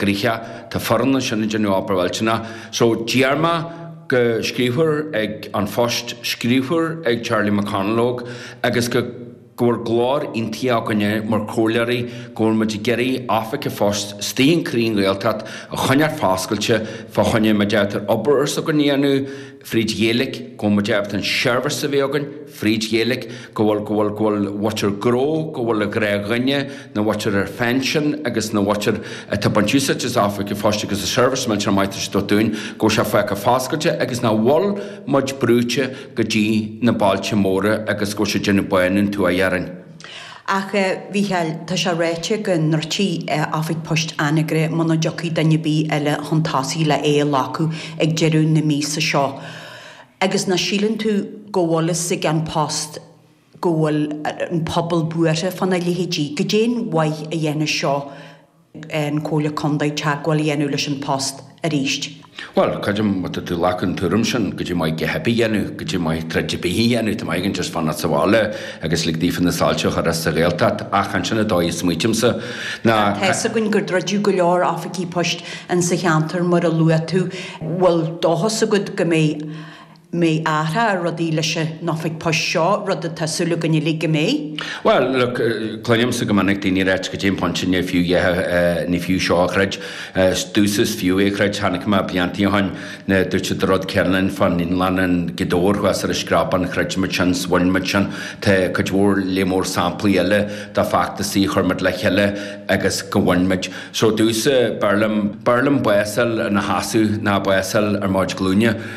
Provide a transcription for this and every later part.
gcríocha. Tá foireann ansin ag déanamh obair ghalánta so d'iarr mé go scríobhfar ag An Phost, scríobhfar ag Charlie McConalogue, agus go go bhfuil glór aontaithe againne mar chomhairleoirí go bhfuil muid ag iarraidh oifig an phoist istigh i gcroí an Ghaeltacht a choinneáil foscailte fá choinne, má deirtear obair ar gnó a dhéanamh, fríd Ghaeilge, go mbeidh muid ábalta an seirbhís a bheith againn fríd Ghaeilge, go bhfuil, go bhfuil, go bhfuil an mhuintir gnó, go bhfuil achan duine, an mhuintir ar phinsean agus an mhuintir atá ag baint úsáid as oifig an phoist agus an seirbhís millteanach maith atá siad a thabhairt dúinn, go bhfuil sé fágtha foscailte agus nach bhfuil muid brúite go dtí na bailte móra agus go bhfuil sé ag déanamh bánú na tuaithe orainn. Ach, a Mhícheáil, tá sé ráite go ndruidfidh oifig poist Anagaire muna dtiocfaidh duine ar bith eile chun tosaigh le é a ghlacadh ag deireadh na míosa seo. Agus ná síleann tú go bhfuil a fhios ag An Post go bhfuil an pobal buartha fá na leithéidí. Goidé an mhaith a dhéanfas seo. an Comhairle Contae teagmháil a dhéanamh leis An Post arís. Bhuel, creidim má tá tú ag glacadh an tuairim sin, goidé an mhaith a dhath ar bith a dhéanamh, goidé an mhaith troid ar bith a dhéanamh, tá chomh maith againn just fanacht sa bhaile agus lig daofa na soilse a chur as sa Ghaeltacht. Ach chan sin an dóigh a smaoitímse. Now, tá a fhios againn gur druideadh go leor oifigí poist insa cheantar mar a luaigh tú. Bhfuil dóchas agat go mbeidh mbeidh athrú ar rudaí leis an oifig poist seo, rud atá súil againn uilig go mbeidh. Bhuel, look, cluinimse go minic daoine ag ráit goidé an pointe ní fiú é, ní fiú seo a throid. Domhsa is fiú é a throid. Chonaic mé blianta ó shin nuair a dúirt siad an rud céanna linn fán Ionad Lae i nGaoth Dobhair thuas ar an Screabán, throid muid sin, 's bhain muid sin. Tá cuid mhór, lear mór samplaí eile de feachtasaí a chuir muid le chéile agus gur bhain muid. So domhsa b'fhearr liom, b'fhearr liom bás a fháil ina sheasamh ná bás a fháil ar mo chuid glúine.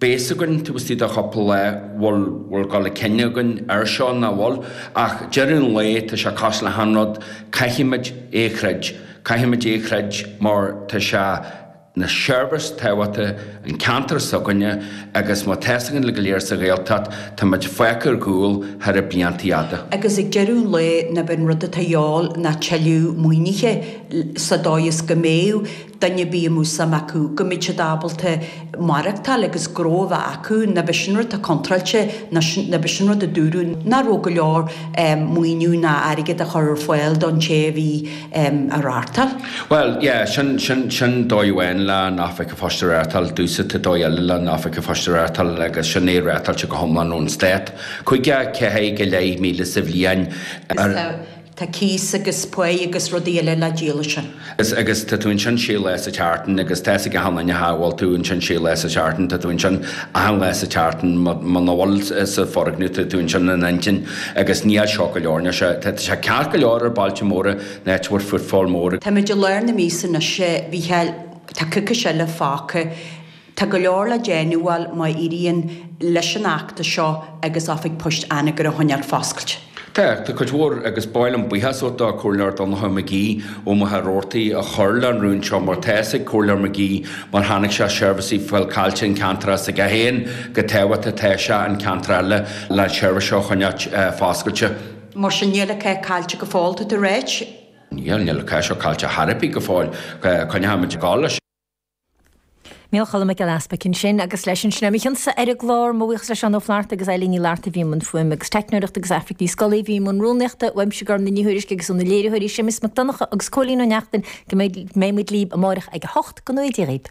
beidh a fhios againn taobh istigh de chúpla lá, bhfuil, bhfuil gá le cinneadh againn air seo ná bhfuil? Ach deireadh an lae, tá sé cosúil le haon rud, caithfimid é a throid. Caithfimid é a throid mar tá sé ina sheirbhís tábhachtach don cheantar s'againne agus mar tá's againne go léir sa Ghaeltacht, táimid fágtha ar gcúl thar na blianta fhada. Agus ag deireadh an lae, nach b'é an rud atá a dhíobháil ná tuilleadh maoinithe, sa dóigh is go mbeidh duine ar bith a mbeadh suim acu, go mbeadh siad ábalta maireachtáil agus gnó a bheith acu, nach b'é sin an rud atá contráilte, nach b'é sin an rud a dúradh, nach raibh go leor maoiniú ná airgead á chur ar fáil don té a bhí á reáchtáil. Bhuel, yeah, sin dóigh amháin leis an oifig an phoist a reáchtáil, domhsa tá dóigh eile leis an oifig an phoist a reáchtáil, agus sin é reáchtáilte go hiomlán ón Stát. Cúig, ceathair go leith míle sa bhliain, ar. Tá cíos agus pá agus rudaí eile le díol ansin. Agus tá tú ansin sé lá sa tseachtain agus tá's ag achan duine nach bhfuil tú ansin sé lá sa tseachtain, tá tú ansin achan lá sa tseachtain, ma, muna bhfuil sa foirgneamh tá tú ansin in intinn agus níl seo go leor, níl sé, tá sé ceart go leor ar bailte móra in áit a bhfuil footfall mór. Táimid i lár na míosa anois a Mhícheáil, tá coicís eile fágtha. Tá go leor le déanamh, bhuel, má éiríonn leis an fheachtas seo agus Oifig Poist Anagaire a choinneáil foscailte. Tá. Tá cuid mhór, agus ba mhaith liom buíochas a thabhairt do Comhairleoir Donncha McGee ó Mhachaire Rabhartaigh a chuir leis an rún seo mar tá 'fhios ag Comhairleoir McGee mar chonaic sé seirbhísí ag fáil caillte an ceantar s'aige féin chomh tábhachtach atá sé an ceantar eile le an tseirbhís seo a choinneáilt foscailte. Mar sin, níl an cath caillte go fóill, atá tú a ráit. Níl. Níl an cath seo caillte chor ar bith go fóill. Coinneoimid ag gabháil leis. Mícheál Cholm Mac Giolla Easbuig ansin agus leis sin é mo chionsa ar an gclár. Mo bhuíochas le Seán Ó Flaithearta agus Eileen Ní Fhlatharta a bhí i mbun fuaime agus teicneoireachta agus Aifric Ní Scolaí a bhí i mbun rúnaíochta. Uaimse Gormfhlaith Ní Thuairisg agus ó na léiritheoirí Séamus Mac Donncha agus Cóilín Ó Neachtain go mbeidh muid libh amárach ag a hocht, go ngnóthaí Dia dhaoibh.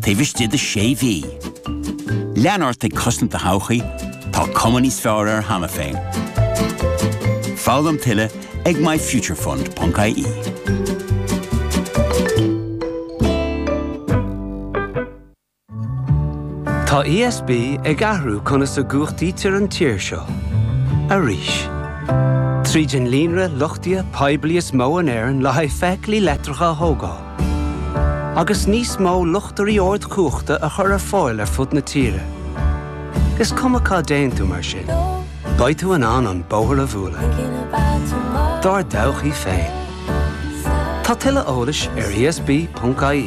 taobh istigh de sé mhí. Lean ort ag cosaint do thodhchaí, tá cuma níos fearr air cheana féin. Foghlaim tuilleadh ag myfuturefund.ie. Tá ESB ag athrú conas a gcumhachtaítear an tír seo. Arís. Tríd an líonra luchtaithe poiblí is mó in Éirinn le haghaidh feithiclí leictreacha a thógáil, agus níos mó luchtairí ardchumhachta a chur ar fáil ar fud na tíre. Is cuma cá dtéann tú mar sin, beidh tú in ann an bóthar a bhualadh dár dtodhchaí féin. Tá tuilleadh eolais ar esb.ie.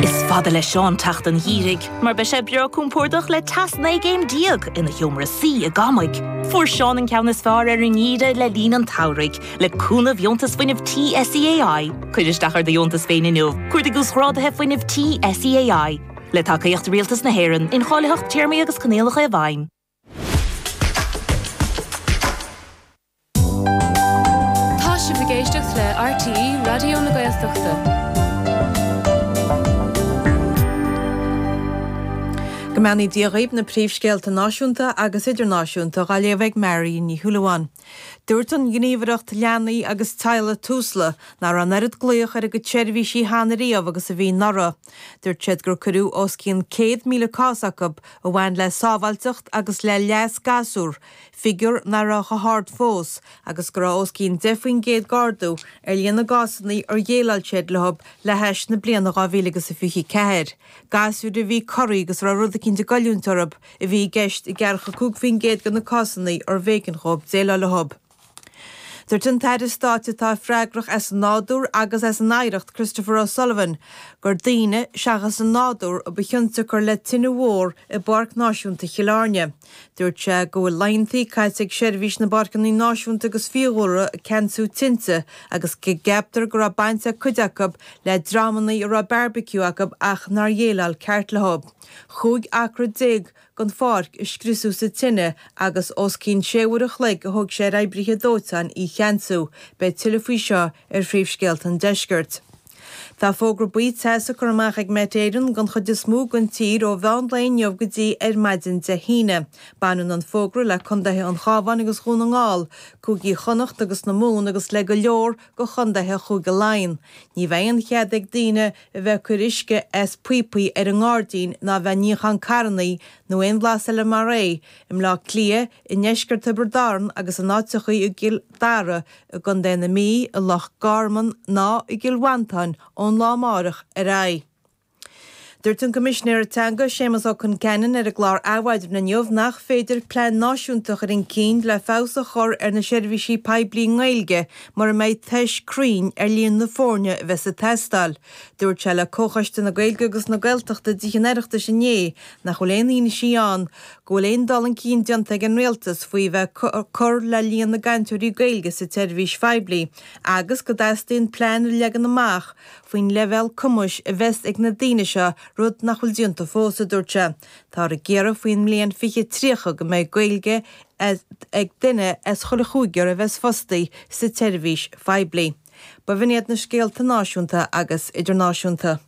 Is fada le Seán teacht an gheimhridh mar beidh sé breá compordach le teas 19 gcéim ina sheomra suí i gCamaigh. Fuair Seán an ceann is fearr ar an ngeimhreadh le linn an tsamhraidh le cúnamh dheontas fuinnimh tí SEAI. Cuir isteach ar do dheontas féin inniu, cuardaigh uasghráduithe fuinnimh tí SEAI, le tacaíocht Rialtas na hÉireann, incháilitheacht téarmaí agus coinníollacha i bhfeidhm. Tá sibh ag éisteacht le RTÉ Raidió na Gaeltachta. Go mbeannaí Dia dhaoibh na príomhscéalta náisiúnta agus idirnáisiúnta á léamh ag Marion Ní Shúilleabháin. Dúirt an Ghníomhaireacht Leanaí agus Teaghlaigh, Tusla, nach raibh an oiread glaoch ar a gcuid seirbhísí cheana riamh agus a bhí anuraidh. Dúirt siad gur cuireadh os cionn 100,000 cás chucu a bhain le sábháilteacht agus le leas gasúr, figiúr nach raibh chomh hard fós, agus go raibh os cionn 10 faoin gcéad d'ardú ar líon na gcásanna ar dhéileáil siad leo le hais na bliana 2024. Gasúir a bhí corraithe agus a raibh rud eicínt ag goilliúint orthu a bhí i gceist i 45 faoin gcéad de na cásanna ar bh'éigean dhóibh déileáil leo. Dúirt an tAire Stáit atá freagrach as an Nádúr agus as an Oidhreacht, Christopher O'Sullivan, gur daoine, seachas an nádúr, a ba chionsiocair le tine mhór i bPáirc Náisiúnta Chill Airne. Dúirt sé go bhfuil laethantaí caite ag Seirbhís na bPáirceanna Náisiúnta agus Fiadhúlra ag ceansú tinte agus go gceaptar go raibh baint ag cuid acu le dreamanna a raibh beárbaiciú acu ach nár dhéileáil ceart leo. 15 acra den pháirc a scriosadh sa tine agus os cionn sé uair an chloig a thug sé ar oibrithe dóiteáin í a cheansú. Beidh tuilleadh faoi seo ar Phríomhscéalta an Deiscirt. Tá fógra buí teasa curtha amach ag Met Éireann don chuid is mó den tír ó mheán lae inniu go dtí ar maidin Dé hAoine. Baineann an fógra le contaetha an Chabháin agus Dhún na nGall, cúigí Chonnacht agus na Mumhan agus le go leor de chontaetha Chúige Laighean. Ní bheidh aon chead ag daoine a a bheith ag cur uisce as píopaí ar an ngairdín ná a bheith ag níochán carrannaí nó aon bhlas eile mar é, i mBleá Cliath, i ndeisceart Thiobraid Árann agus in áiteachaí i gCill Dara, i gContae na Mí, i Loch Garman ná i gCill Mhantáin ón lá amárach ar aghaidh. Dúirt an Coimisinéir Teanga, Séamas Ó Concheanainn ar an gclár Adhmhaidin inniu nach féidir plean náisiúnta a chur chun cinn le feabhas a chur ar na seirbhísí poiblí i nGaeilge mura mbeidh tuiscint chruinn ar líon na foirne a bheas ag teastáil. Dúirt sé le Comhchoiste na Gaeilge agus na Gaeltachta de chuid an Oireachtais inné nach bhfuil aon fhianaise ann go bhfuil aon dul chun cinn déanta ag an Rialtas faoi bheith ag cur le líon na gcainteoirí Gaeilge sa tseirbhís phoiblí agus go dteastaíonn plean a leagan amach faoin leibhéal cumais a bheas ag na daoine seo, rud nach bhfuil déanta fós, a dúirt sé. Táthar ag iarraidh faoin mbliain 2030 go mbeidh Gaeilge ag duine as chuile chúigear a bheas fostaí sa tseirbhís phoiblí. B'in iad na scéalta náisiúnta agus idirnáisiúnta.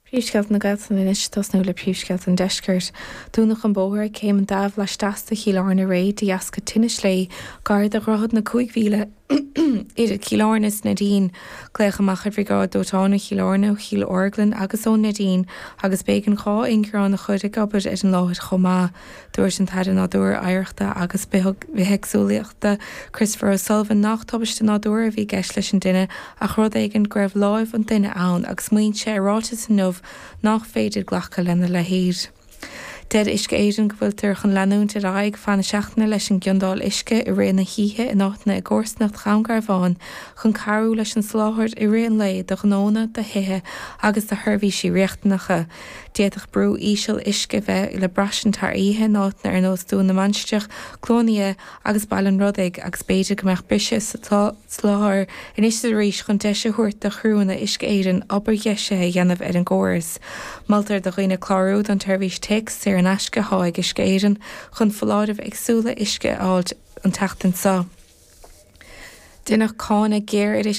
Príomhscéalta na Gaeltachta anois. Tosnóimid le príomhscéalta an Deiscirt. Dúnadh an bóthar ag Céim an Daimh laisteas de Chill Airne aréir de dheasca tine sléibhe gar do Dhroichead na Cúig Mhíle. idir Chill Airne is Neidín, glaodh amach ar Bhriogáid Dóiteáin ó Chill Airne, ó Chill Orglan agus ó Neidín, agus b'éigean dhá ingearán a chur ag obair ar an láthair chomh maith. Dúirt an tAire Nádúir, Oidhreachta agus Bithéagsúlachta, Christopher O'Sullivan, nach tubaiste nádúir a bhí i gceist leis an tine ach rud éigin go raibh lámh an duine ann agus maíonn sé i ráiteas inniu nach féidir glacadh lena leithéid. Deir Uisce Éireann go bhfuiltear chun leanúint ar aghaidh feadh na seachtaine leis an gciondáil uisce i rith na hoíche in áiteanna i gcomharsanacht Dhún Garbhán chun cabhrú leis an soláthar i rith an lae do ghnónna, do thithe agus do sheirbhísí riachtanacha. D'fhéadfadh brú íseal uisce bheith le braistint thar oíche in áiteanna ar nós Dún na Mainistreach, Cluain Fhia agus Baile an Rodaigh agus b'fhéidir go mbeadh briseadh sa Soláthar, anois is arís, chun deis a thabhairt do chriúanna Uisce Éireann obair dheisithe a dhéanamh ar an gcóras, moltar do dhaoine clárú don tseirbhís téacs saor in aisce atá ag Uisce Éireann chun foláirimh éagsúla uisce a fháilt an tseachtain so. Deineadh cáineadh géar ar Uisce